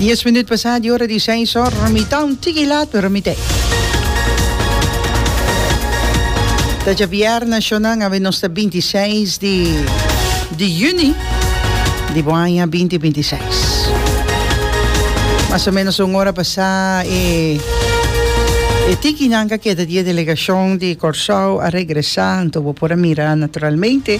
Dies minut pasá di ora di seis or, mi ta un tiki lat pero mi t'e. Ta dja bierna shonan awe nos ta binti i seis di di yuni di bo aña binti binti i seis. Mas o menos un ora pasá e e tikinan ka keda di e delegashon di Kòrsou a regresá anto bo por a mira naturalmente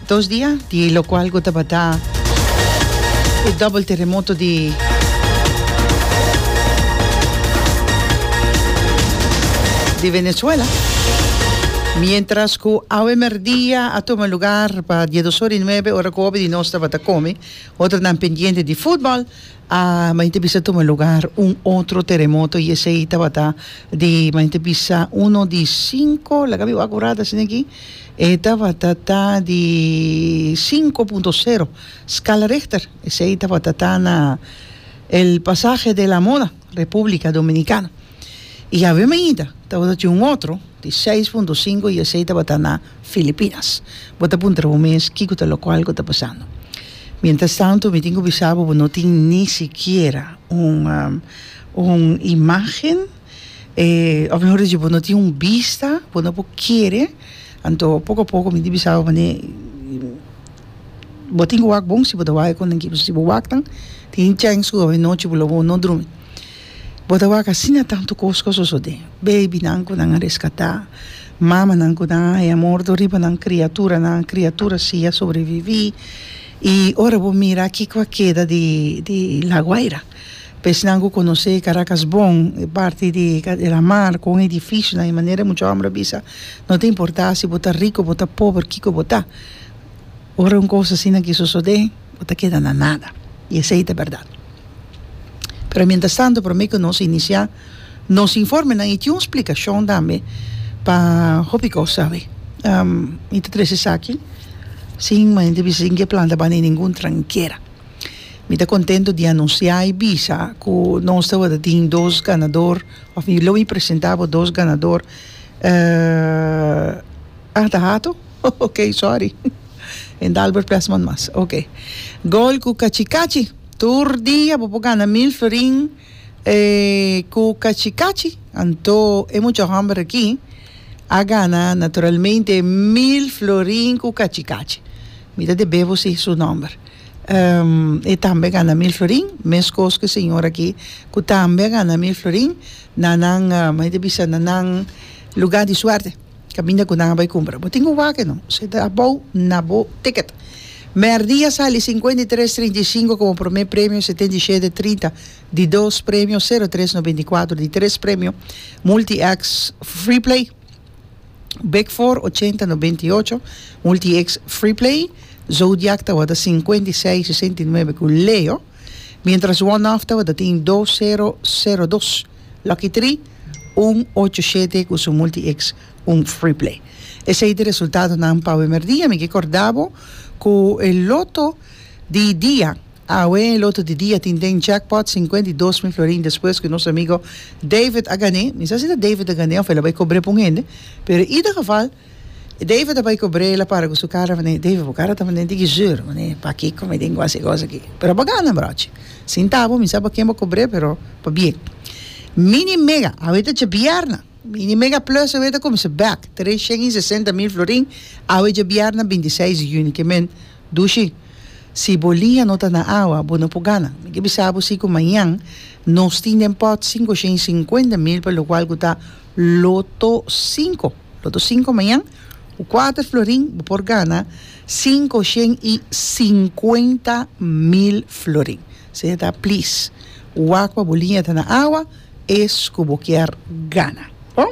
Dos dia di e locual cu tabata e double terremoto di. Di Venezuela, mientras cu awe merdia a tuma lugar pa diedos ora y nuebe ora cu hopi di nos tabata come, otronan pendiente di futbol, a mayoritd bisa tuma lugar un otro terremoto y esey tabata di mayoritd bisa uno di cinco, laga mi wak wrada asina aki. E tabata ta di sinku punto sero skala Richter. Esei tabata ta na El Pasaje de la Mona, Repúblika Dominikana. I awe mainta tabata tin un otro di seis punto sinku i esei tabata na Filipinas. Bo ta puntra bo mes kiko ta lokual ku ta pasando. Mientras tanto mi tin ku bisa bo bo no tin ni sikiera un un imágen. eh, òf mehor dichi, bo no tin un bista, bo no por kere, anto poko a poko mi di bisa bo manera bo tin ku wak bon si bo ta wak e konta n'ki, pasobra si bo wak tan tin chèns ku awe nochi bo lo bo no drumi, bo ta wak asina tantu kos ku a sosodé, beibinan ku nan a reskatá, mamanan ku nan a haya morto riba nan kriaturanan, kriatura si a sobreviví, i ora bo mira kiko a keda di di La Guaira Pesnan ku konosé e Karakas bon, e parti di e lamar, kon e difísil nan, e manera muchu hòmber a bisa, no ta importá si bo ta riko, bo ta pober, kiko bo ta, ora un kos asina ke sosodé, bo ta keda na nada. I esei ta bèrdat. Pero miéntras tantu, promé ku nos inisiá nos informenan, i tin un splikashon tambe pa hopi kos awe. Mi ta trese esaki sin, men mi ta bisa sin ke planta banda ningun trankera. Mi ta contento di anuncia y bisa cu nos tabatin dos ganador of mi lo mi presenta bo dos ganador ah ta hato ok sorry Endalbert Pesman mas ok gol cu cachi cachi tur dia bo por gana mil florin cu cachi cachi anto e mucha homber aki a gana naturalmente mil florin cu cachi cachi mi ta debebo si su nomber. e tambe a gana mil florin mescos cu e señor aki cu tambe a gana mil florin na nan me ta bisa na nan lugar di suerte caminda cu nan a bay cumpra bo tin cu wak no si ta abao na bo ticket merdi a sali cincuenta y tres trinta y cinco como prome premio setenta y shete trinta di dos premio cero tres noventa y cuatro di tres premio multi ex free play Bek for ochenta nobenta i ocho, Multi-X Freeplay, Zodiac tabata sinkuenta i seis sesenta i nuebe ku Leo, mientras One Off tabata tin dos sero sero dos, Lucky Three un ocho shete ku su Multi-X un Freeplay. Esei ta e resultadonan pa bemerdia. Mi ke korda bo ku e loto di dia. Awe lotu di dia tin den jackpot sinkuenta i dos mil florin despues ku nos amigo David a gané. Mi sa si ta David a gané òf el a bai kobr'é pa un hende, pero ida geval David a bai kobr'é el a para ku su kara manera David bo kara ta manera di gizur manera pakiko mi tin ku hasi kos aki. Pero a bo gana brochi. Sin tabo mi sa pa ken bo kobr'é pero pa bien. Mini mega awe ta djabièrna mini mega plus awe ta kuminsá bèk tres shen i sesenta mil florin awe djabièrna binti seis di yuni ke men dushi. Si bo liña no ta na awa, bo no por gana. Mi ke bisa bo si ku mañan nos tin den pòt sinku oshenta i sinkuenta mil pa lokual ku ta loto sinku. Loto sinku mañan ku kuater florin bo por gana sinku oshenta i sinkuenta mil florin. Esei ta plis wak pa bo liña ta na awa es ku bo kier gana. Bon.